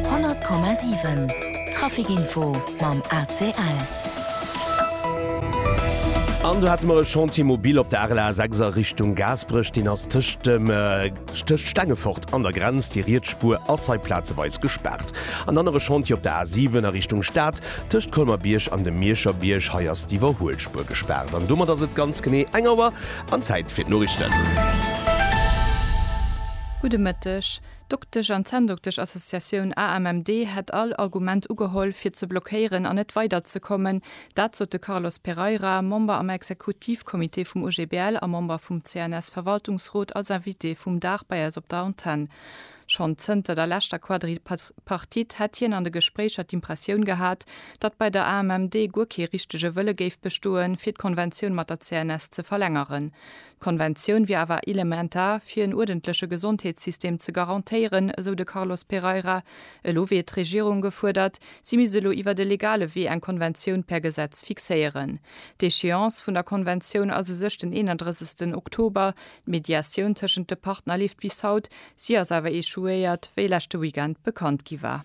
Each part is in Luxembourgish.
100,7 Trafic Info mam ACL. An do hate mer e Chantier mobil op der RLA 6 a Richtung Gaasperech. Deen ass tëscht dem tëscht Stengefort an der Grenz. Déi riets Spuer ass hei plazeweis gespaart. En anere Chantier op der A 7 a Richtung Stad tëscht Colmer-Bierg an dem Mierscher Bierg. Hei ass d'Iwwerhuelspuer gespaart. An domat ass et ganz genee eng Auer an Zäit fir d'Noriichten. Gudde Mëtteg. D'Doktesch an Zänndoktesch-Associatioun AMMD hätt all Argument ugeholl, fir ze blockéieren an net weiderzekommen. Dat sot de Carlos Pereira, Member am Exekutivcomité vum OGBL a Member vum CNS-Verwaltungsrot, als Invité vum Dag bei eis op der Antenn. Schonn zënter der leschter Quadripartite hätt hien an de Gespréicher d'Impressioun gehat, datt bei der AMMD guer kee richtege Wëlle géif bestoen, fir d'Konventioun mat der CNS ze verlängeren. D'Konventioun wier awer elementar, fir en uerdentleche Gesondheetssystem ze garantéieren, esou de Carlos Pereira. Elo wier d'Regierung gefuerdert, si misst elo iwwer e legale Wee eng Konventioun per Gesetz fixéieren. D'Echéance vun der Konventioun ass u sech den 31 Oktober. D'Mediatioun tëschent de Partner leeft bis haut, si ass awer echouéiert, wéi leschte Weekend bekannt gi war.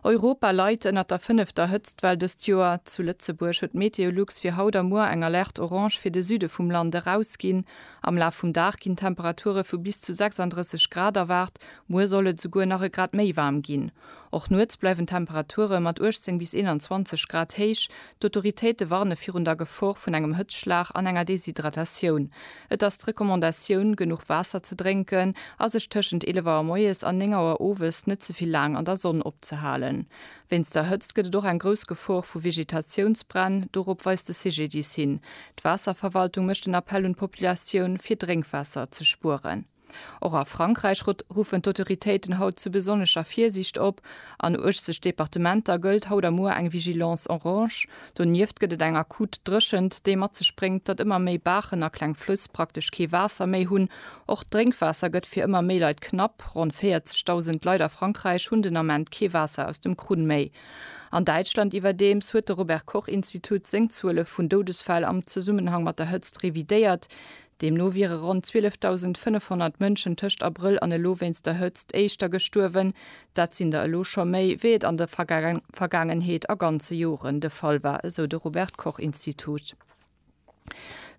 Europa leit ënnert der fënnefter Hëtztwell dëst Joer. Zu Lëtzebuerg huet d'Meteolux fir haut a muer eng Alerte orange fir de Süde vum Land erausginn. Am Laf vum Dag ginn Temperature vu bis zu 36 Grad erwaart, muer soll et esouguer nach e Grad méi waarm ginn. Och nuets bleiwen d'Temperature mat 18 bis 21 Grad héich. D'Autoritéite warne virun der Gefor vun engem Hëtzschlag an enger Deshydratatioun. Et ass d'Recommandatioun, genuch Waasser ze drénken a sech tëschent 11 Auer moies an 9 Auer owes net ze vill laang an der Sonn opzehalen. Wéinst der Hëtzt gëtt et och eng grouss Gefor vu Vegetatiounsbränn, dorop weist de CGDIS hin. D'Waasserverwaltung mécht en Appell un d'Populatioun, fir Drénkwaasser ze spueren. Och a Frankräich ruffen d'Autoritéiten haut zu besonnescher Virsiicht op. An 80 Departementer gëllt haut a muer eng Vigilance orange. Donieft gëtt et eng akut Dréchent, déi mat sech bréngt, datt ëmmer méi Baachen a kleng Flëss praktesch kee Waasser méi hunn. Och d'Drénkwaasser gëtt fir ëmmer méi Leit knapp. Ronn 40.000 Leit a Frankräich hunn den Ament kee Waasser aus dem Krunn méi. An Däitschland iwwerdeems huet de Robert-Koch-Institut seng Zuele vun Doudesfäll am Zesummenhang mat der Hëtzt revidéiert. Deemno wiere ronn 12.500 Mënschen tëscht Abrëll an elo wéinst der Hëtzt éischter gestuerwen. Dat sinn der elo scho méi, wéi et an der Vergaangenheet a ganze Joren de Fall war, esou de Robert-Koch-Institut.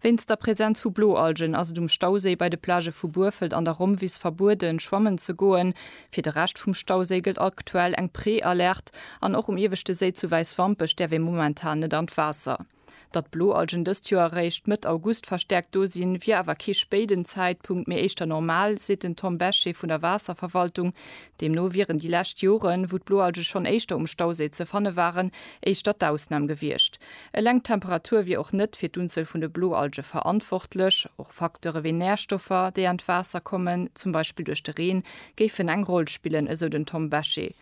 Wéinst der Presenz vu Bloalgen ass et um Stauséi bei de Plagë vu Burfelt an der Rommwiss verbueden, schwammen ze goen. Fir de Rescht vum Stauséi gëllt aktuell eng Prealerte an och um ieweschte Séi zu Wäiswampech däerf ee momentan net an d'Waasser. Datt Bloalgen dëst Joer eréischt Mëtt August verstäerkt do sinn, wier awer kee spéiden Zäitpunkt, mee éischter normal, seet den Tom Bechet vun der Waasserverwaltung. Deemno wieren déi lescht Joren, wou d'Bloalge schonn éischter um Stauséi ze fanne waren, éischter d'Ausnam gewiescht. Eleng d'Temperatur wier och net fir d'Unzuel vun de Bloalge verantwortlech. Och Facteure wéi Närstoffer, déi an d'Waasser kommen, zum Beispill duerch de Reen, géifen eng Roll spillen, esou den Tom Bechet.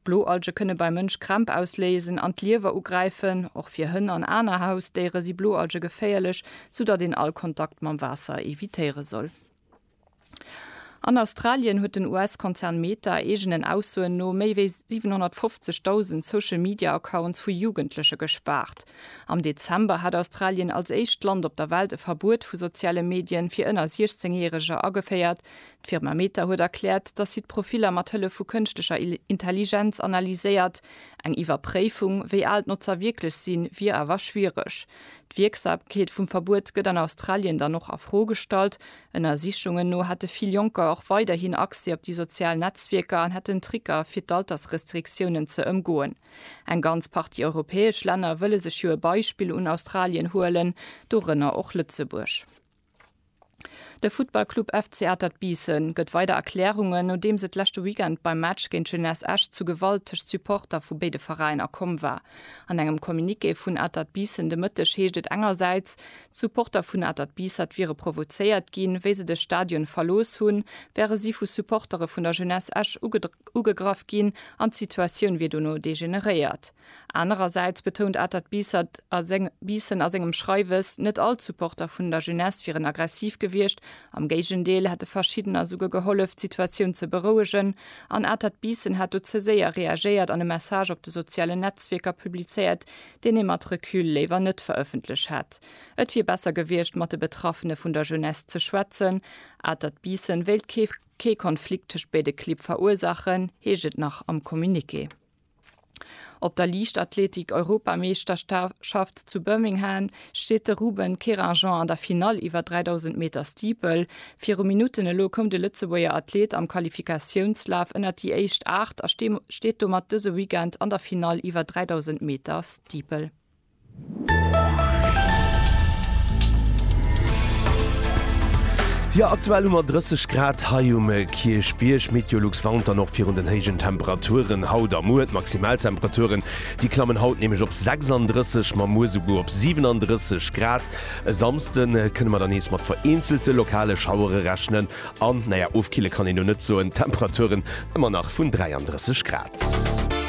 Bloalge kënne beim Mënsch Krämp ausléisen an d'Liewer ugräifen. Och fir Hënn an aner Hausdéiere si Bloalge geféierlech, sou datt een all Kontakt mam Waasser evitéiere soll. An Australien huet den US-Konzern Meta eegenen Aussoen no méi wéi 750.000 Social Media Accounts vu Jugendleche gespaart. Am Dezember hat Australien als éischt Land op der Welt e Verbuet vu soziale Medien fir ënner 16 Järeger ageféiert, D'Firma Meta huet erkläert, datt si d'Profiller mat Hëllef vu kënschtlecher Intelligenz analyséiert. Eng Iwwerpréifung, wéi al d'Notzer wierklech sinn, wier awer schwiereg. D'Wierksamkeet vum Verbuet gëtt an Australien dann och a Fro gestallt. Ënnersichungen no hätte vill Jonker och weiderhin Accès op déi sozial Netzwierker an hätten Tricker, fir d'Altersrestriktiounen ze ëmgoen. Eng ganz Partie europäesch Länner wëlle sech jo e Beispill un Australien huelen, dorënner och Lëtzebuerg. De Futtballclub FC Atert Biissen gëtt weider Erklärungen, nodeems et leschte Weekend beim Match géint d'Jeunesse Esch zu Gewalt tëscht Supporter vu béide Veräiner komm war. An engem Communiqué vun Atert Biissen de Mëtteg heescht et engersäits, d'Supporter vun Atert Biissert wiere provozéiert ginn, wéi se de Stadion verlooss hunn, wäre si vu Supportere vun der Jeunesse Esch ugegraff ginn an d'Situatioun wier dono degeneréiert. Anerersäits betount Atert Biissen a sengem Schreiwes, net all d'Supporter vun der Jeunesse wieren aggressiv gewiescht, am Géigendeel hätte verschiddener souguer gehollef, d'Situatioun ze berouegen. An Atert Biissen hat do ze séier reagéiert an e Message op de sozialen Netzwierker publizéiert, deen ee mat Recul léiwer net verëffentlech hätt. Et wier besser gewiescht, mat de Betraffene vun der Jeunesse ze schwätzen. Atert Biissen wéilt kee Konflikt tëscht béide Clibb verursaachen, heescht et nach am Communiqué. Op der Liichtathletik-Europameeschterschaft zu Birmingham steet de Ruben Querinjean an der Finall iwwer 3.000 Meter Steeple. Viru Minutten elo koum de Lëtzebuerger Athlet am Qualifikatiounslaf ënnert déi éischt Aacht a steet domat dëse Weekend an der Finall iwwer 3.000 Meter Steeple. Jo, aktuell hu mer 30 Grad hei um Kierchbierg. Meteolux warnt dann och virun den héijen Temperaturen haut a muer. D'Maximaltemperaturen, déi klammen haut nämlech op 36, ma muer souguer op 37 Grad. E Samsde kënne mer dann nees mat vereenzelte lokale Schauere rechnen an, naja, ofkille kann een elo net soen, d'Temperaturen ëmmer nach vun 33 Grad.